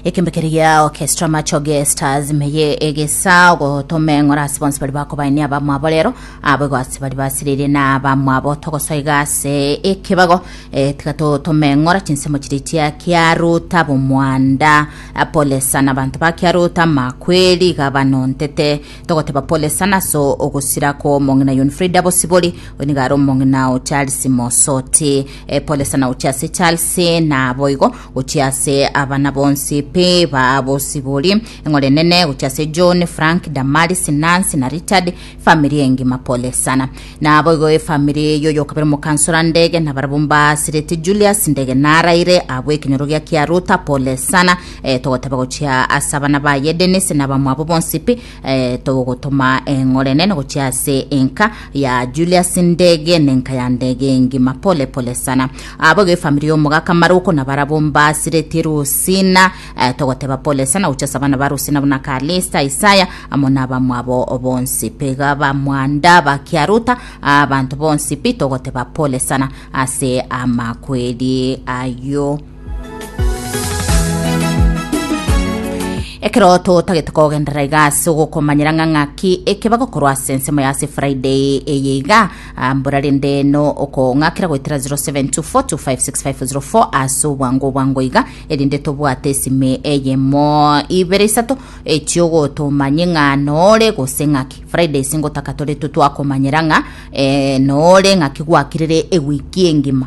ekembekeri gia orchestra machoge stars meye egesa gotome ng'ora ase bonsi bari bakobaini abamwabo rero abo egwasi bari basirire na abamwabo togosoiga ase ekebago eh, tiga totome ng'ora chinsemo chiri chia kiaruta bomwanda Ah, pole sana abanto ba kiaruta makweri gabano ntete togoteba pole sana so ogosira ko omong'ina yon frida bosibori onigare omong'ina o charles mosoti Epolesana gochia ase Charles na boigo gochia ase abana bonsi pe ba bosibori. Eng'ore nene gochia ase John, Frank, Damaris, Nancy na Richard. Family engima polesana. Na boigo efamily yoyokabere omokansora Ndege na barabwo mbasirete Julius Ndege naraire abwo ekenyorogia kia Ruta polesana. Eh, togoteba gochia ase abana baye Dennis na abamwabo bonsi pi Eh, togotoma eng'orenene gochia ase enka ya Julius Ndege nenka ya Ndege engima pole pole sana abo gefamiri omogaka Maruko na barabo mbasiretie Rusina eh, togoteba pole sana gochia ase abana ba Rusina buna Kalista Isaya amo na abamwabo bonsi pega bamwanda bakiaruta abanto bonsi pi togoteba pole sana ase amakweri ayo Ekero totagete kogenderera iga ase ogokomanyera ng'a ng'aki eke bagokorwa ase ensemo ya ase Friday eye iga ah, mbora rende no okong'akera goetera 0724256504 ase obwango obwango iga erinde tobwate esime eyemo ibere isato echiogotomanye ng'a nore gose ng'aki Friday ase ngotaka tore totwakomanyera ng'a eh, nore ng'aki gwakirire ewiki engima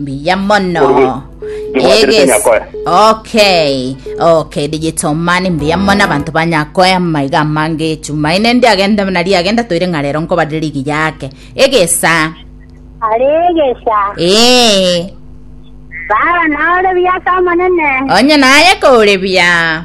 Mbuya mono. Orwe. Ndibwaterete Egesi. nyakoya. Okay. Okay, digital money mbuya mono abantu banyakoya maiga amange echumaine ndi agenda muna riagenda toire ng'a rero nkobare ligi yake. Egesa. Aregesa. Eh. Baba nore biasa omonene. Onye naye kore bia.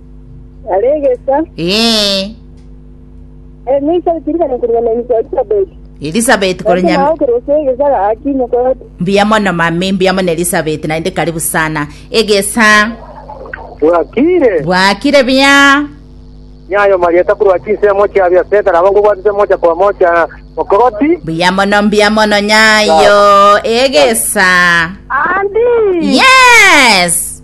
Are egesa, Ee, emisa etirikana kurwa na insa Elizabeth. Elizabeth Ase korenya nao kerose egesa gaki mokoroti. mbuya mono mami, mbuya mono Elizabeth, naende karibu sana. Egesa bwakire bwakire bia nyayo marieta kurwa chinse emo chiabia seta nabo ngobwatete mocha kwa mocha mokoroti mbuya mono, mbuya mono nyayo. Egesa Andi. yes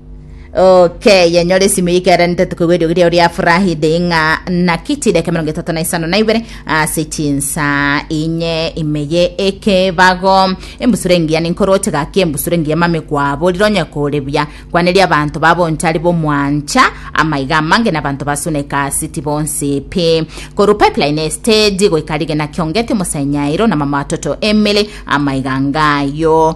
okeye nyore esimu yikeranete tokoigwa eriogi riao ria furahide ing'a naki chideka emerongo etato na isano na ibere ase chinsa inye imeye ekebago embusuro engiya ninkoroche gaki embusuro engiya mame kwaborire onye kore buya kwaneria abanto babonchari bomwancha amaiga amange na abanto basune kasiti bonsi pi koru pipeline estage goika rigena kiongeti omosainyairo na mama watoto emily amaiga ngayo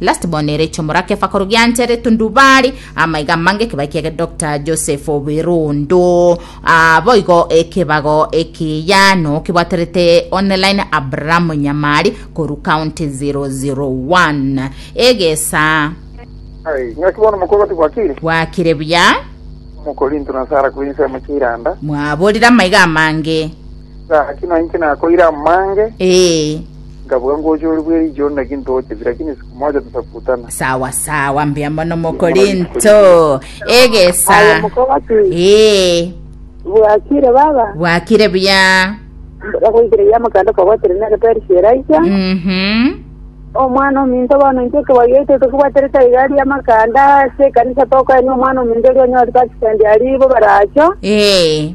Last born ere echomora kefa koru giancha ere tundubari amaiga amange ekebae kia Doctor Joseph Obirondo ah, boigo ekebago ekiya no kibwaterete online Abraham Nyamari koru county 001 egesa Ai, ng'aki bono mokoro tibwakire? bwakire buya Omokorinto nasara korwa ensemo chi'iranda. mwaborire amaiga amange Gaki na inche nakoire amange, Ee, nkabuga ngocha ore bwe riicho onde naki ntocheti, lakini siku moja tutakutana. sawa sawa, mbuya mono mokorinto. Aye Egesa. mokobati Ee, bwakire baba bwakire buya. bagoikire ya mokanda kobwatire na egetari kieraika Mhm. omwana ominto bono inche kebagete tokobwatire taigari ya makanda ase ekanisa tokoenia omwana ominto oria onyore takisendi aribo baracho Ee,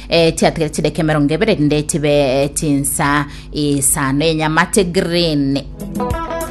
eh, chiatigare chideka emerongo ebere rinde chibe eh, chinsa isano enyamate green